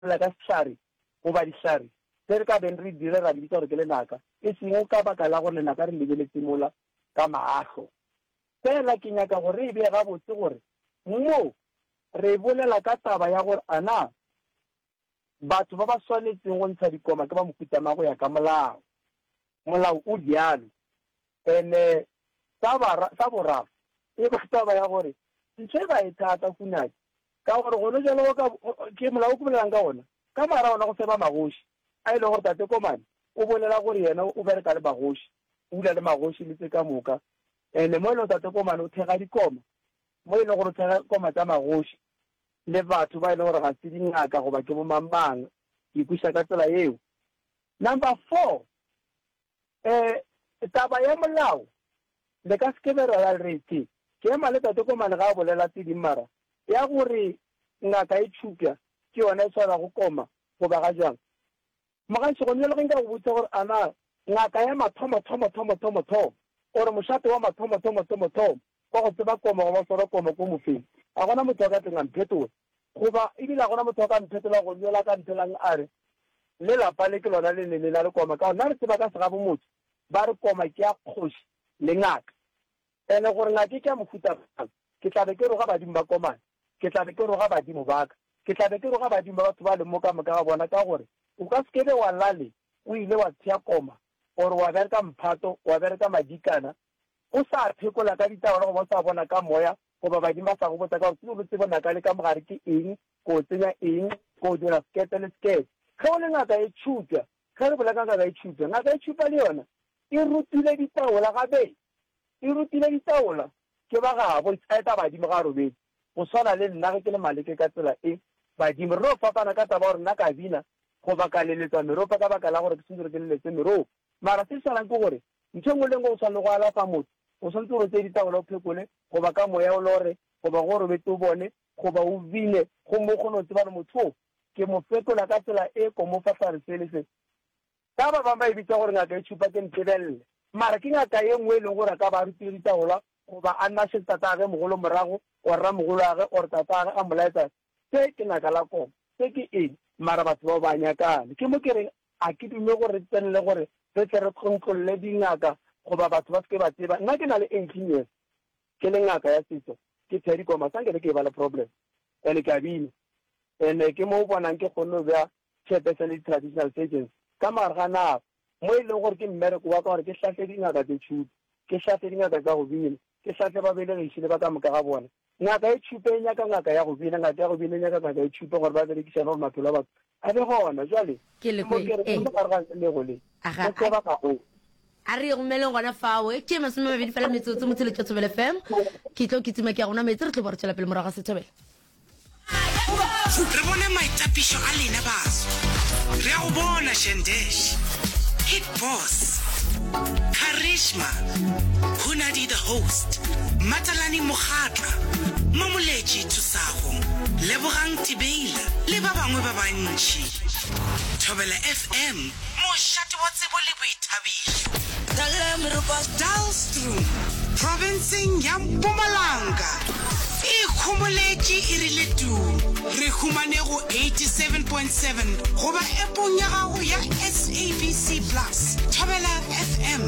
Lela ka sehlare goba dihlare tše re ka beng re dire ra di bitsa gore ke lenaka, e sego ka baka la gore lenaka re le beletše mola ka mahlo. Feela ke nyaka gore re e bee gabotse gore mo re bolela ka taba ya gore a na batho ba ba swanetšego go ntsha dikoma ke ba mohuta mang go ya ka molao. Molao o bjalo. And-e sa bara, sa boraro, e ba taba ya gore ntho e ba e thata kunake ka gore gone bjalo go ka, ke Molao o ke bolelang ka wona, ka morago ga wona go feba magoši a e lego gore Tate Komane o bolela gore yena o bereka le magoši, o dula le magoši le tse ka moka. And-e mo e lego Tate Komane o thekga dikoma, mo e lego gore o thekga koma tša magoši le batho ba e lego gore ga se dingaka goba ke bo mang-mang, ke ikwešiša ka tsela yeo. Number four, eh, taba ya molao le ka se ke be ra ya re tše, ke ema le Tate Komane ga a bolela tše ding mara ya gore ngaka e tšhupja ke yona e swarago koma goba ga jwang. Mogašo gona bjale ge nka go botša gore ana ngaka ya mathomo-thomo-thomo-thomo-thomo or mošate wa mathomo-thomo-thomo-thomo Kwa go tseba koma goba go swara koma ko mofeng. A gona motho a ka tleng a mphetola. Goba, Ebile a gona motho a ka mphetola go nyola ka nthelang a re, Le lapa le ke lona le ne le na le koma. Ka gona re tseba ka segabomotse ba re koma ke ya kgoši le ngaka. And gore ngaka e ke ya mohuta mang, ke tla be ke roga badimo ba komana. Ke tla be ke roga badimo ba ka. Ke tla be ke roga badimo ba batho ba leng mo ka moka ga bona ka gore o ka se ke be wa lale o ile wa tshea koma or wa bereka mphato, wa bereka madikana, O sa phekola ka ditabelo goba o sa bona ka moya goba badimo ba sa go botsa ka gore tsebe botsebo naka le ka mogare ke eng, ko o tsenya eng, ko o dira sekete le sekete. Ge o le ngaka e tšhutwa, ge re bolela ka ngaka e tšhutwa, ngaka e tšhupa le yona e rutile ditabola gabee e rutile ditabola ke ba gabo e tsaya taba badimo ga robedi go swana le nna ge ke le maleke ka tsela e badimo re no fapana ka taba gore nna ka bina goba ka leletsa meropa ka baka la gore ke sentse re ke leletse meropa mara se swanang ke gore Ntho e nngwe le e nngwe o swanetše go alafa motho, o swanetše gore o tseye ditabola o phekole, goba ka moya o lore, goba ge o robetše o bone, goba o bine, gomme o kgone go tseba gore motho wo ke mo fetola ka tsela e ko mo fa hlare se le se. Ka ba bangwe ba e bitsa gore ngaka e tšhupa, ke ntebelele, mara ke ngaka ye nngwe e lego gore a ka ba a rutile ditabola, goba a nna šettatagwe mogolo morago, or ramogolwagwe, or tatagwe a mo laetsa Se ke naka la koko. Se ke eng? Mara batho bao ba nyakane. Ke mo ke reng, a ke dume gore re tsenele gore re tle re tlontlolle dingaka goba batho ba se ke ba tseba. Nna ke na le 18 years ke le ngaka ya setso, ke thea dikoma, sa nke be ke e ba le problem. And ke a bina. And ke mo o bonang ke kgonne go bea Setshepe sa di-traditional surgeons ka mogare ga nako, mo e lego gore ke mmereko wa ka gore ke hlahle dingaka tše tšhupa, ke hlahle dingaka tša go bina, ke hlahle babelegiši le ba ka moka ga bona. Ngaka e tšhupa e nyaka ngaka ya go bina, ngaka ya go bina e nyaka ngaka e tšhupa gore ba berekišane gore maphelo a batho a be gona. Bjale, ke mo ke re, ke mo gare ga ntlha le go le, go tseba ga go. A re ye go meleng gona fao. E tšee masome mabedi fela metsotso, motse le tšwa Thobela FM. Ke tlo kitima ke ya go nwa metsi, re tlo bo re tšwela pele morago ga Sethobela. Re bone maitapišo a lena baso. Re a go bona Shandesh, Hit Boss, Karishma, Hunadi the Host, Matalani Mokgatla, Mamoletši Thusago, Lebogang Tibeila le ba bangwe ba bantši. Thobela FM. Mošate wa tsebo le boithabišo. Dullstroom, profenseng ya Mpumalanga, e ikhomoletše e rile tuu. Re humane go 87.7 goba App-ong ya gago ya SABC Plus. Thobela FM.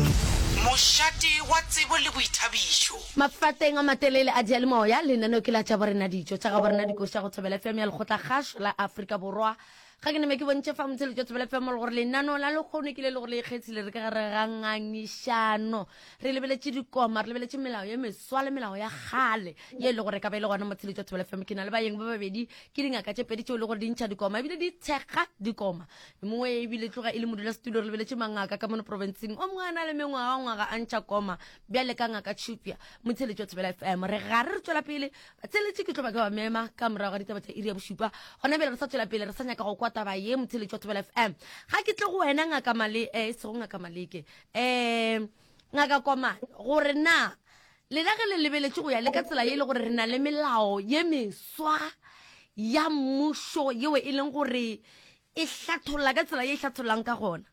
Mošate wa tsebo le boithabišo. Mafateng a matelele a diyalemoya, lenaneo ke la Tšaborena Dijo tša Gaborena Dikoša go Thobela FM ya Lekgotlakgašo la Afrika Borwa. ga ke neme ke bontšhe fa motshelo jwa tsebela femo le gore lenaneo la lekgono ke le le gore le ikgethile re ka gare ga ngangišano re lebeletše dikoma re lebeletše melao ye meswa le melao ya gale ye e le gore ka ba e le gona motshelo jwa tsebela femo ke na le bayeng ba babedi ke dingaka tše pedi tšeo e le gore di ntšha dikoma ebile di tshega dikoma mongwe ebile tloga e le modula setulo re lebeletše mangaka ka mono provinceng o mongwe a na le mengwaga ngwaga a ntšha koma bjale ka ngaka tšhupja motshelo jwa tsebela femo re gare re tswela pele theletše ke tlo ba ke ba mema ka morago ga ditaba tsa iri ya bošupa gona bjale re sa tswela pele re sa nyaka go kwa taba ye motheletši wa thobela fm ga ke tle go wena ngaka male um eh, e sego ngaka maleke um ngaka komane gore na lena ge le lebeletše go ya le ka tsela ye e le gore re na le melao ye meswa ya mmušo yeo e leng gore e hlatholla ka tsela ye e hlathollang ka gona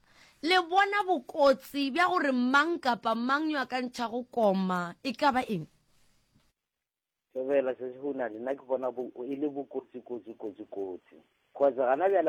le bona bokotsi bja gore mang kapa mang yo a ka ntšhago koma e ka ba eng Thobela, Sesi Hounane, nna ke bona bo, e le bokotsi, kotsi, kotsi, kotsi. Kgotsa gana bjale ba.